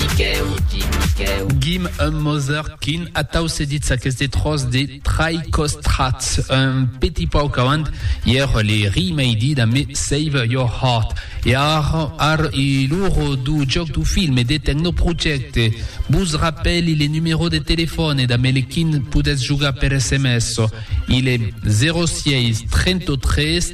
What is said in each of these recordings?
Miquèu, Quim, Miquèu. Guim, un mosèr quin, atau se ditz aqueste tròç de trai costrat. Un petit pauc avant, ièr le ri mei dit a me Save your heart. E ar, ar e l'oro dou jòc dou film e de tecnoprojècte. Bus rapèli le numerò de telefòne da me le quin podètz jogar per sms. Il e 06 33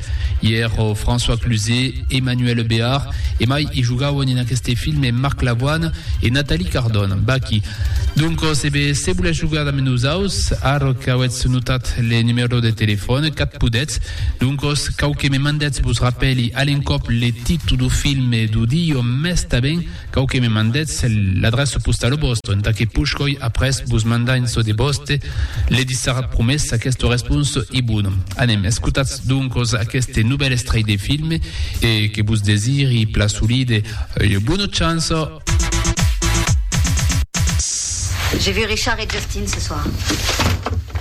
Ièr, François Cluzet, Emmanuelle Béard e mai i jogauen en aqueste filme Marc Lavoine e Nathalie Cardon. Baquí. Doncos, e ben, se volètz jogar damb nosaus, ara qu'auètz notat le numèro de telefòn, qu'ath podètz, doncos, cau que me mandètz vos rapèli a l'encòp le títol dau filme dau dion mès tanben Cau que me mandetz l'adreça postala vòsta, entà que pushoi après vos mandar en çò de vòste, le dissarà promés aquesta responsa e bona. Anem, escotatz doncas aqueste novèl estrèit de filme e que vos desiri pla solide ua bona chança. J'ai vu Richard et Justin ce soir.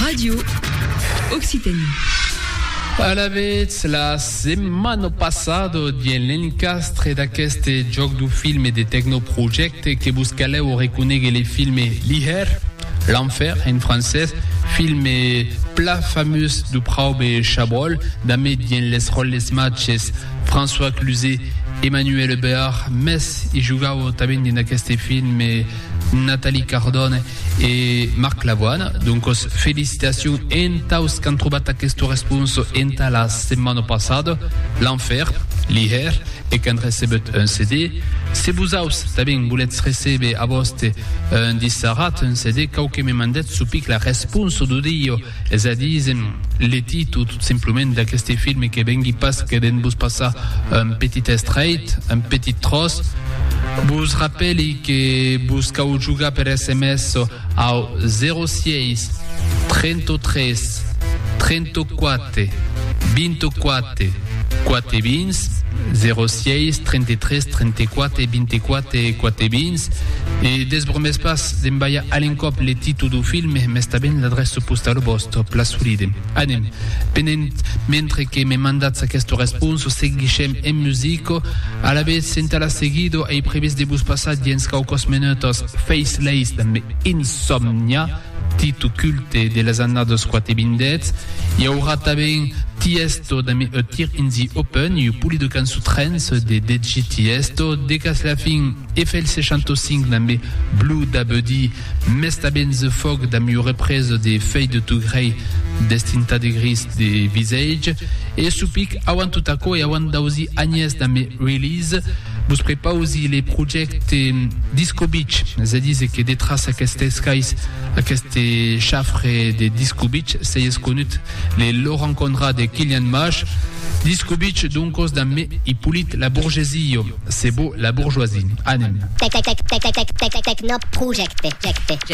Radio Occitanie. Alavetz, la setmana passada, dien l'encastre d'aqueste joc du filme de Tecnoprojecte que vos caleu reconegue le filme L'Hier, l'Enfer en francès, filme pla famós du Praube Chabrol, damé dien les roles matches François Cluzet, Emmanuel Béard, mes i jugau tanben dien d'aqueste filme Nathalie Cardone, E Marc Labuana, doncos felicitacions entaus qu'an trobat aqueste respons entà la setmana passada, l'an fèr, li hèr e qu'an recebut un CD. Se vosaus tanben volètz recéber a vòste un dissarat, un CD, cau que me mandètz çò pic la responsa d'audio. Es a dir, s'èm letit o tot simplement d'aqueste film que vengui pas que d'en vos passar un petit estrèit, un petit tròç, vos rapèli que vos cau jogar per sms au 06 33 34 24. Quate vins, 06 33 34 24 quate vins, e desbromes pas d'envaiar a l'encòp le títol du film, mes tanben l'adrèça postau vòst, pla solide. Anem, penent, mentre que me mandatz aquesta responsa, seguishem en musica, alavetz senta la seguida ei previst de vos passar diens quauquas menòtas Faceless damb Insomnia, Dit o culte de las annadas quat e bindètz, i aurà tanben Tiesto damb eth Tir Inzi Open e ua polida cançon trance de DJ Tiesto, decàs la fin e fèl 65 damb Blue Da Buddy, mès tanben The Fog damb ua represa de Fade To Grey deth Tintadegris de Visage, e Supic auant tot aquò e auant dausi anhès damb Release. Vos prepausi le projècte Disco Beach, es a díser que detràs aqueste escais, aqueste chafre de Disco Beach, sei esconut le Laurent Conrad e Kilian Mash. Disco Beach, doncos, damb me Hyppolite la Bourgesie, se vò la bourgeoisie. Anem. Tecnoprojecte.